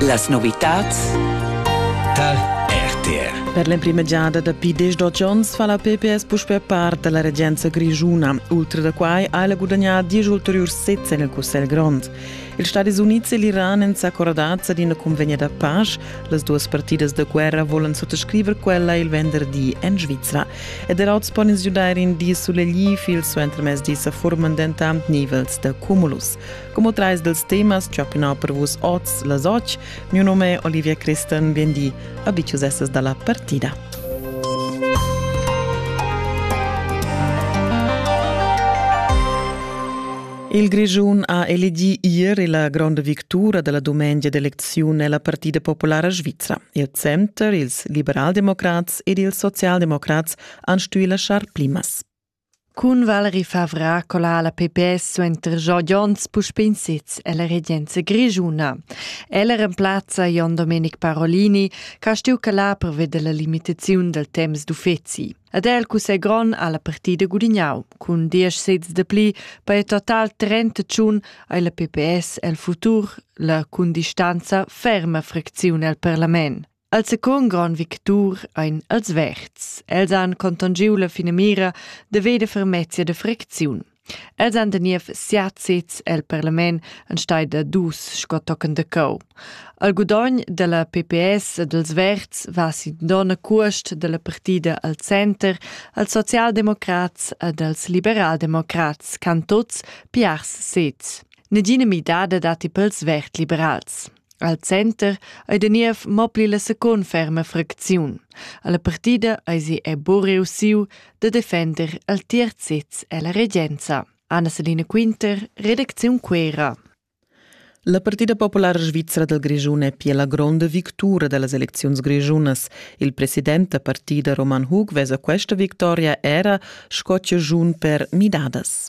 Las novitads tar RTR. Per l'emprima giada dapi diesch onns fa la PPS puspè part da la regenza grischuna. Ultra da quai ha ella gudagnà diesch ulteriurs sezs en il Cussegl grond. Ils Stadis Unids e l'Iran èn s'accordads ad ina convegna da pace. Las duas partidas da guerra volan suttascriver quella il venderdi en Svizra. Ed er oz pon ins giudair in di sulegliv. Il suentermezdi sa forman dentant nivels da cumulus. Como trais dels temas ch'opinau per vus oz las och, mio nome è Olivia Christen, biendi, abicius esses dalla partida. Il Grigiun ha elegì ieri la gronda victura della dumengia d'elezione nella Partida Populara Svizra. Il Center, ils liberaldemocrats ed ils socialdemocrats han stuì lasciar plimas. Cun Valerie Favra cola la PPS suenter Jogi Jons puspè in sez ella regenza grischuna. Ella remplazza Jon Domenic Parolini, che ha stuì calar per vedere la limitaziun del temps d'uffizi. Ed è il cussegl grond alla partida gudignau cun diesch sezs de pli per total 31 ai la PPS el futur la cun distanza ferma fracziun el parlament. El secund grand victur ein els verds. Els han contongiu la finamira de veder fermezia de fricziun. Els han teniev siat sez el parlament enstei da dus sco tochen de cau. Al gudogn della PPS e dels Verds va sin donna cuost della partida al center als socialdemocrats ed als liberaldemocrats can tots piars sez. Negina midada dati pels Verd-liberals. Al center ei da niev mo pli la secund ferma fracziun. Alla partida eisi è buc reussiu da defender al tier sez ella regenza. Anna-Selina Quinter, redacziun Quera. La Partida Populara Svizra dal Grischun è pia la gronda victura da las elecziuns grischunas. Il president da partida Roman Hug vesa questa victoria era sco giun per midadas.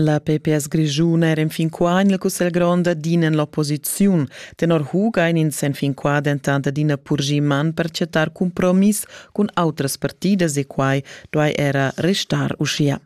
La PPS grischun era enfin qua en il Cussegl grond adina en l'opposiziun. Tenor Huga ein ins enfin qua dentant adina purgì man per chattar compromiss cun autras partidas e quai duai era restar uschia.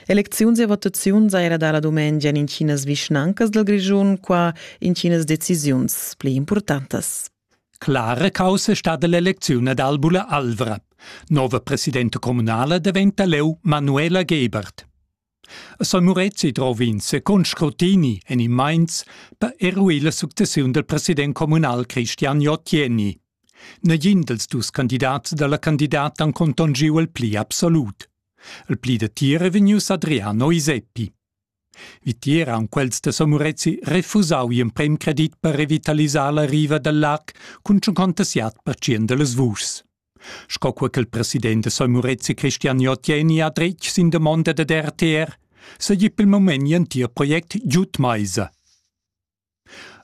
Elecziuns e votaziuns era da la dumengia in Chinas vischnancas dal Grischun qua in Chinas decisiuns pli importantas. Clara caussa stada l'elecziun ad Albula Alvra. Nova presidenta communala daventa leu Manuela Gebert. A San Murezi drova ins con scrutini en in Mainz per eruir la successiun del president communal Christian Jottieni. Negin dels dus candidats dalla candidata han contongiu il pli absolut. Il pli da tira vegnius Adriano Iseppi. Vitier haun quels da Somorezi refusau gl'emprem credit per revitalisar la riva dal lac cun tschuncontas jad per tschient da las vuschs. Sco co ch'el president da Somorezi Christian Jotieni ha dretg sin damonda dad RTR, seigi pel moment gl'entir project giud maisa.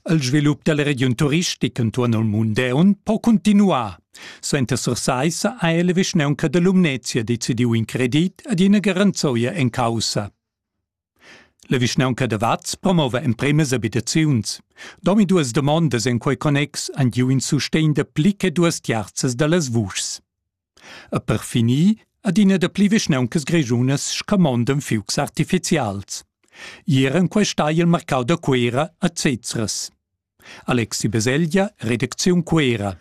Il svilup dalla regiun turistica entuorn il Mundeun po cuntinuar. Suenter Sursaissa ha la vischnaunca da Lumnezia decidiu in credit ad ina garanzoia en caussa. La vischnaunca da Vaz promova empremas abitaziuns. Domi duas domondas en quei connex han giu in sustegn da pli che duas tiarzas dallas vuschs. E per finir adina dapli vischnauncas grischunas scamondan fiugs artificials. Ier en questa hai il marcau da Cuera a Zezras. Alexi Beselja, Redakziun Cuera.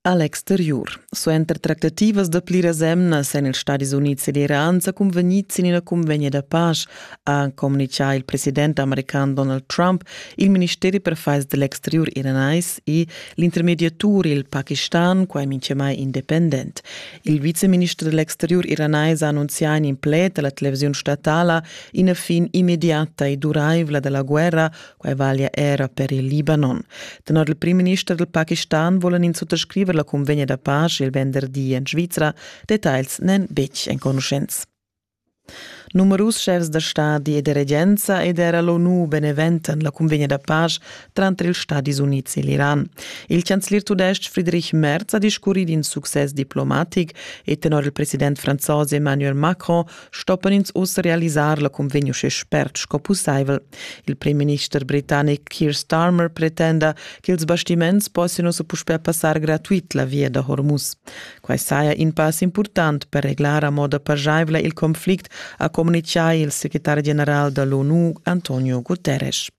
Alex Terjur. Suenter tractativas da pliras emnas èn ils Stadis Unids ed Iran sa cunvegnids sin ina cunvegna da pasch ha communichà il president american Donald Trump, il ministeri per affairs dell'exterior iranais e l'intermediatur il Pakistan, quai minchemai independent. Il viceminister dell'exterior iranais ha annunzià in pled alla televisione statala ina fin immediata e duraivla della guerra, quai vaglia era per il Libanon. Tenor il primminister del Pakistan vollen ins unterscriver la convegna da pace il venderdi in Svizzera, details nen betg enconuschents. Numerus schefs da stadi e da regenza ed era l'ONU beneventan la cunvegna da pasch tranter ils Stadis Unids e l'Iran. Il chancelier tudestg Friedrich Merz ha discurri d'in success diplomatic e tenor il president franzos Emmanuel Macron stoppan ins uss realisar la cunvegna uschè spert sco pussaivel. Il premierminister britannic Keir Starmer pretenda ch'ils bastiments possian ussa puspè passar gratuit la via da Hormuz. Quai saja in pass impurtant per reglar a moda paschaivla il conflict, ha communitgà il secretar general da l'ONU Antonio Guterres.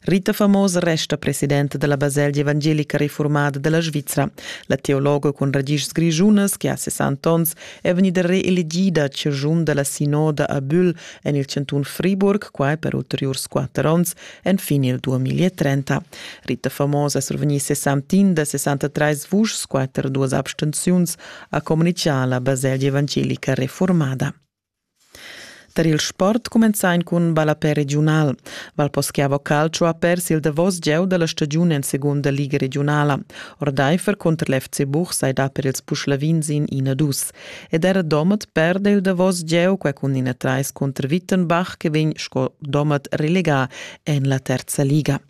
Rita Famos resta presidente della Baselgia Evangelica Reformada della Svizzera. La teologa con radici grischunas, che ha 60 ans, è vegnida reelegida ciurgiun della sinoda a Bühl en il cantun Friburg, quai per ulteriurs quatter ans, Enfin il 2030. Rita Famosa survegnì 61 da 63 vuschs, quatter duas abstenziuns, ha communitgà la baselgia evangelica reformada. Tar il sport cumenzain cun ballapè regiunal. Valposchiavo Calcio ha pers il davos gieu da la stagiun en segunda liga regionala. Ordaifer conter l'FC Buch sai da per ils Puschlavin sin ina dus. ed era Domat perde il davos gieu quai cun ina trais cunter Wittenbach che vegn sco Domat relegà en la terza liga.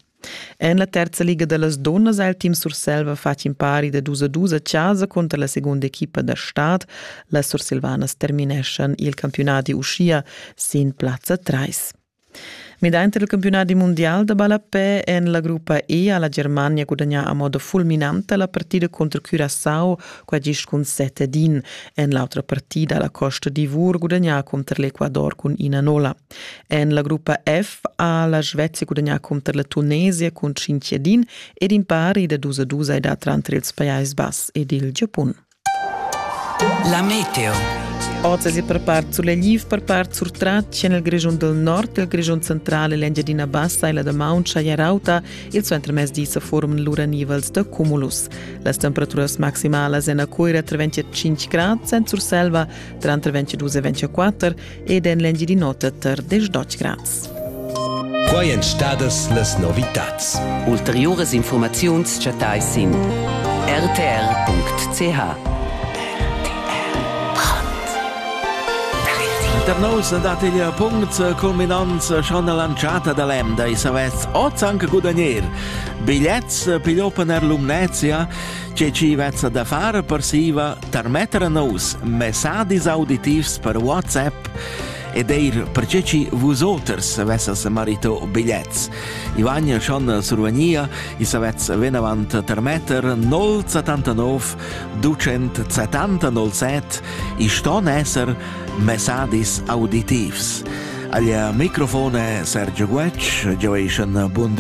En la terza liga da las dunnas ha il team Surselva fatg impari da dus a dus a casa cunter la segunda equipa da stad. Las Sursilvanas termineschan il campiunat uschia sin plazza 3. Midaint il campiunadi mundial da ballapè èn la gruppa E ha la Germania gudagnà a moda fulminanta la partida cunter Curaçao, quai gist cun set ed in. En l'autra partida ha la Costa d'Ivor gudagnà cunter l'Ecuador cun ina nola. En la gruppa F ha la Svezia gudagnà cunter la Tunesia cun cinc ed in ed in pari da dus a dus è dat tranter ils Pajais Bass ed il Giapun. La meteo. Oz è per part sulegl per part surtratg en il Grischun del Nord, il Grischun central e l'Engiadina Bassa e la Damaun Chayarauta, il suentermezdi sa forman lura nivels da cumulus. Las temperaturas maximalas en a Coira tra 25 grad, en Surselva tranter 22 e 24 ed en l'Engiadin'Ota tar 10 grads. Quai èn stadas las novitads. Ulteriuras infurmaziuns chattai sin rtr.ch. Da nous dat il punct culminanza schon all'anciata da l'Emda e savets oz anche gudagnere. Bigliets pigliò per l'Umnezia, c'è ci vezza da fare per siva tarmetter a nus messadis auditivs per WhatsApp ed eir perche chi vus oters avessas marito bigliets. Ivan schon survegnia i savetz venavant tarmetter 079 277 i ston esser messadis auditivs. Al microfone Sergio Guetsch, Joation Bunde